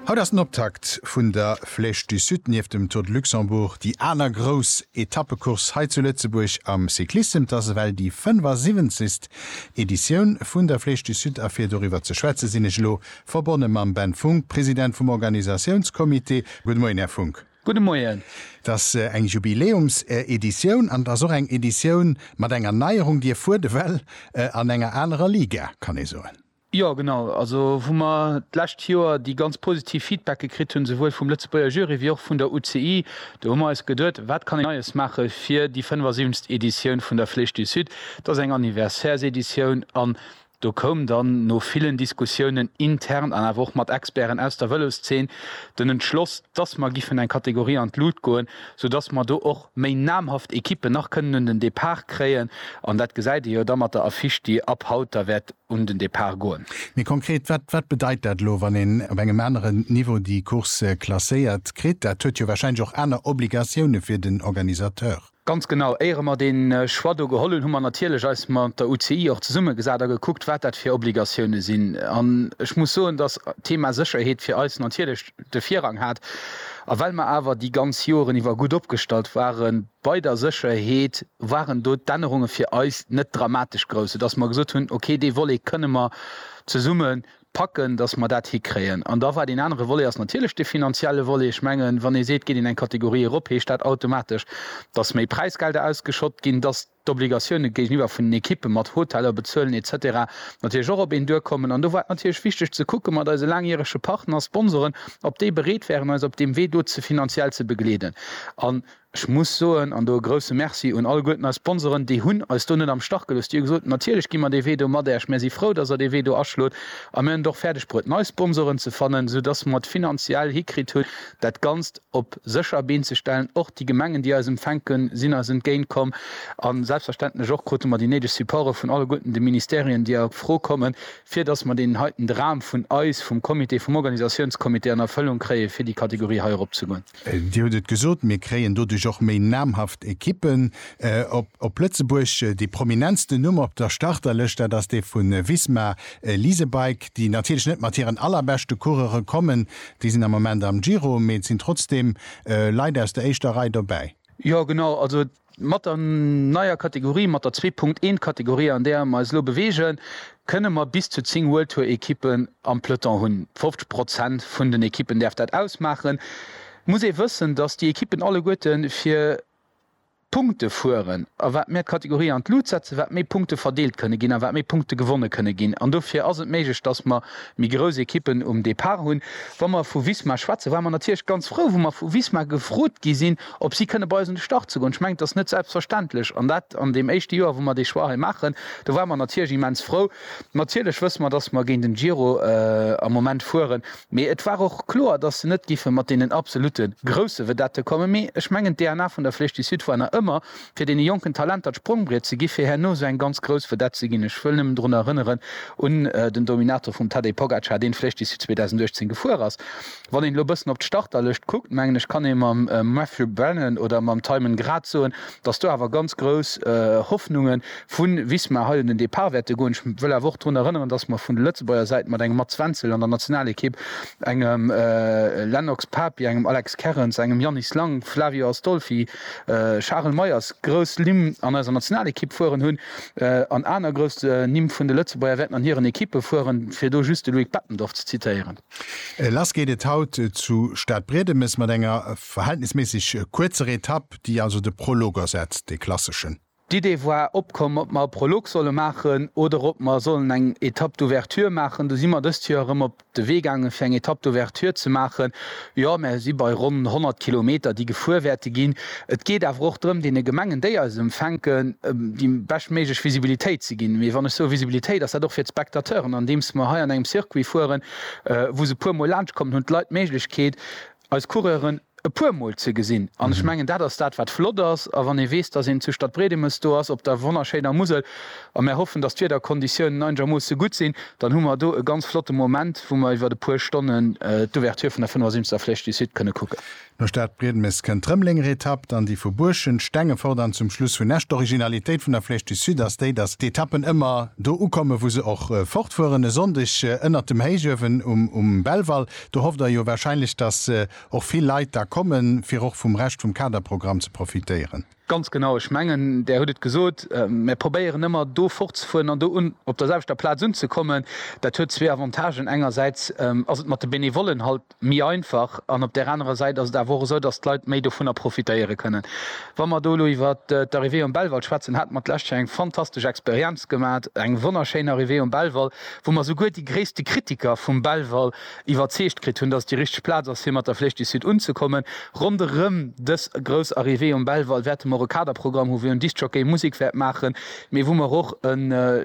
Haut ass den Optakt vun der Flèche du Sud, nieft dem Tour de Luxembourg déi aner grouss Etappecourse hei zu Lëtzebuerg am Cyclissem. Et ass ewell déi 75. Editioun vun der Flèche du Sud a fir doriwwer ze schwätze sinn ech elo verbonne mam Ben Funck, President vum Organisatiounscomité. Gudde Moien, Här Funck. Gudde Moien. Et ass eng Jubiläumseditioun an et ass och eng Editioun mat enger Neierung. Dir fuert ewell an enger anerer Liga, kann ee soen. Jo, genau. Also wou mer d'lescht Joer déi ganz positiv Feedbacke kritt hunn, souwuel vum Lëtzebuerger Jury wéi och vun der UCI, do hu mer eis geduet, wat kann een Neies maache fir déi 75. Editioun vun der Flèche du Sud. Et ass eng Anniversairs-Editioun an do koum dann no villen Diskussiounen intern an awer och mat Experten aus der Vëloszeen den Entschloss, dass mer giffen eng Kategorie an d'Lut goen, sou dass mer do och méi namhaft Equippen nach kënnen un den Depart kréien, an dat gesäit ee jo da mat der Affiche, déi ab haut da wäert un den Depart goen. Méi konkret, wat, wat bedeit dat elo, wann een op engem anere Niveau déi Course klasséiert kritt? Dat huet jo wahrscheinlech och aner Obligatioune fir den Organisateur. Ganz genau. Éiere mer dee Choix do geholl hunn, hu mer natierlech eis mat der UCI och zesummegesat a gekuckt, wat dat fir Obligatioune sinn. An ech muss soen, dass d'Thema Sécherheet fir eis natierlech de Virrang hat, a well mer awer déi ganz Joren iwwer gutt opgestallt ware bei der Sécherheet, waren do d'Ännerunge fir eis net dramatesch grouss, soudass mer gesot hunn, okay, dee Volet kënne mer zesumme packen, dass mer dat hikréien. An da war deen anere Volet ass natierlech dee finanzielle Volet. Ech mengen, wann ee seet, geet een eng Kategorie erop, heescht dat automatesch, dass méi Präisgelder ausgeschott ginn, dass, d'Obligatioune géigeniwwer vun den Ekippe mat Hoteller bezuelen etc. Natierlech och op een duerkommen. An do war et natierlech wichteg ze kucke mat eise laangjärege Partner, Sponsoren, ob déi bereet wären eis op deem Wee do ze finanziell ze begleeden. An ech muss soen, an do e grousse Merci un alleguerten eis Sponsoren, déi hunn eis do net am Stach gelooss. Déi hu gesot, natierlech gi mer dee Wee do mat Äerch, mär si frou, datt der dee Wee do aschlot a mär hunn et och fäerdeg bruet nei Sponsoren ze fannen, soudass mer et finanziell hikritt hunn dat Ganzt, op sécher Been ze stellen. Och déi Gemengen, déi eis empfänken, sinn eis entgéint komm. A selbstverständlech och krute mer déi néideg Supporte vun alleguerten de Ministerien, déi a Fro kommen, fir datt mer deen heiten Dram vun eis, vum Comité, vum Organisatiounscomité an Erfëllung kréien, fir déi Kategorie hei erop ze goen. Dir hutt et gesot, mir kréien doduerch och méi namhaft Equippen op Lëtzebuerg. Dee prominentsten Numm op der Starterlëscht, dat ass dee vu Visma Leasebike, déi natierlech net mat hiren allerbeschte Coureure kommen, Déi sinn am Moment am Giro, mee et sinn trotzdeem Leit aus der éischter Rei dobäi. Jo genau, also mat der neier Kategorie, mat der zwee Punkt eent Kategorie an där mer eis elo beweegen, kënne mer bis zu zéng World Tour Ekippen am Peloton hunn. 50 Prozent vun den Ekippen däerf dat ausmaachen. Muss ee wëssen, datt déi Ekippen alleguerte fir Punkte fueren a wat mär d'Kategorie an d'Lut setzen, wat méi Punkte verdeelt kënne ginn a wat méi Punkte gewonne kënne ginn. An dofir ass et méiglech, dass mer méi grouss Ekippen um Depart hunn. Wa mer vu Visma schwätzen, ware mer natierlech ganz frou, wou mer vu Visma gefrot gi sinn, ob si kënne bei eis un de Start ze goen. Ech mengen, et ass net selbstverständlech. An dat an deem éischte Joer, wou mer dee Choix hei maachen. Do ware mer natierlech immens frou. Natierlech wësse mer, dass mer géint den Giro am Moment fueren. Mee et war och kloer, dass se net géife mat deenen absolute grousse Vedette kommen. Mee ech mengen, d'DNA vun der Flèche du Sud war nach ëmmer, fir deene jonken Talenter d'Sprongbriet ze gi fir herno esou eng ganz grouss Vedette ze ginn. Ech wëll nëmmen drun erënneren, un den Dominator vum Tadej Pogacar, deen d'Flèche du Sud 2018 gefuer ass. Wann een elo e bëssen op d'Starterlëscht kuckt, mengen ech, kann ee mam Matthew Brennan oder mam Tymon Grad soen, dass do awer ganz grouss Hoffnunge Vu Wismar heiten den Depart wäerte goen. Ech wëll awer och drun erënneren, datt mer vun der Lëtzebuerger Säit mat engem Mats Wenzel an der Nationalekipp, engem Lennox Papi, engem Alex Kerrens, engem Yannis Lang, Flavio Astolfi, Charel Meyers, grouss Nimm an eiser Nationalekipp fueren hunn. An aner grouss Nimm vun de Lëtzebuerger wäerten an hiren Ekippe fueren, fir do just de Loïc Bettendorf ze zitéieren. Lass geet et haut zu Stadbriedemes mat enger verhältnisméisseg kuerzer Etapp, déi also de Prolog ersetzt, dee klasseschen. D'Idee war opkomm, ob mer e Prolog solle maachen oder ob mer sollen eng Etape d'ouverture maachen. Du si mer dëst Joer erëm op de Wee gaangen, fir eng Etape d'ouverture ze maachen. Jo, mär si bei ronn 100 Kilometer, déi gefuer wäerte ginn. Et geet awer och drëm, deene Gemengen, déi eis empfänken, déi beschtméiglech Visibilitéit ze ginn. Mee wann ech soe Visibilitéit, ass dat och fir d'Spectateuren, andeems mer hei an engem Circuit fueren, wou se e puermol laanschtkommen, hunn d'Leit d'Méiglechkeet, eis Coureuren, e puer Mol ze gesinn. An ech mengen, dat ass dat, wat flott ass. A wann ee weess, dass een zu Stadbriedemes do ass, op der wonnerschéiner Musel, a mär hoffen, dass d'Wiederkonditiounen einegermoosse gutt sinn, dann hu mer do e ganz flotte Moment, wou mer iwwert e puer Stonnen d'Ouverture vun der 75. Flèche du Sud kënne kucken. No Stadbriedemes kënnt d'Rëmelenger Etapp, dann déi vu Buerschent, Stengefort an zum Schluss Hunn Esch. D'Originalitéit vun der Flèche du Sud ass déi, dass d'Etappen ëmmer do ukommen, wou se och fortfueren, e Sonndeg ënnert dem Héichuewen um Belval. Do hofft Der jo wahrscheinlech, dass och vill Leit da kommen, fir och vum Rescht vum Kaderprogramm ze profitéieren. Ganz genau. Ech mengen, Der hutt et gesot, Mir probéieren ëmmer do fortzefueren an do un, op der selwechter Plaz unzekommen. Dat huet zwee Avantagen, Engersäits ass et mat de Benevollen halt méi einfach an op där anerer Säit ass et awer och esou, dass d'Leit méi dovunner profitéiere kënnen. Wa mer do elo iwwer d'Arrivée um Belval schwätzen, hate mer d'lescht Joer eng fantastesch Experienz gemat, eng wonnerschéin Arrivée um Belval, wou mer souguer déi gréisste Kritiker vum Belval iwwerzeegt kritt hunn, dass et déi richteg Plaz ass, fir mat der Flèche du Sud unzekommen. Ronderëm dës grouss Arrivée um Belval wäerte mer och e Kaderprogramm hu wou en Diskjockey Musek wäert maachen, mee wou mer och e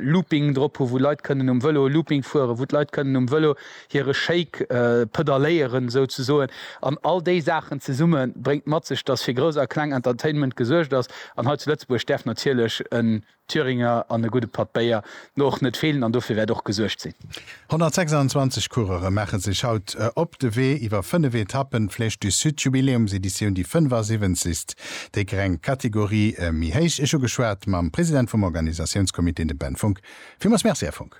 Looping drop hu wou Leit kënnen um Vëlo e Looping fueren, wou d'Leit kënnen um Vëlo hire Shake pedalléieren souzesoen. An all déi Saachen zesumme bréngt mat sech, dass fir grouss a kleng Entertainment gesuergt ass. An hei zu Lëtzebuerg däerf natierlech e Thüringer an e gudde Patt Béier no och net feelen an dofir wäert och gesuergt sinn. 126 Coureure maache sech haut op de Wee iwwer 5 Etappen. D'Flèche du Sud Jubiläumseditioun, déi 75. Déi greng Kategorie méi héich. Ech hu geschwat mam President vum Organisatiounscomité, dem Ben Funck. Villmools Merci, Här Funck.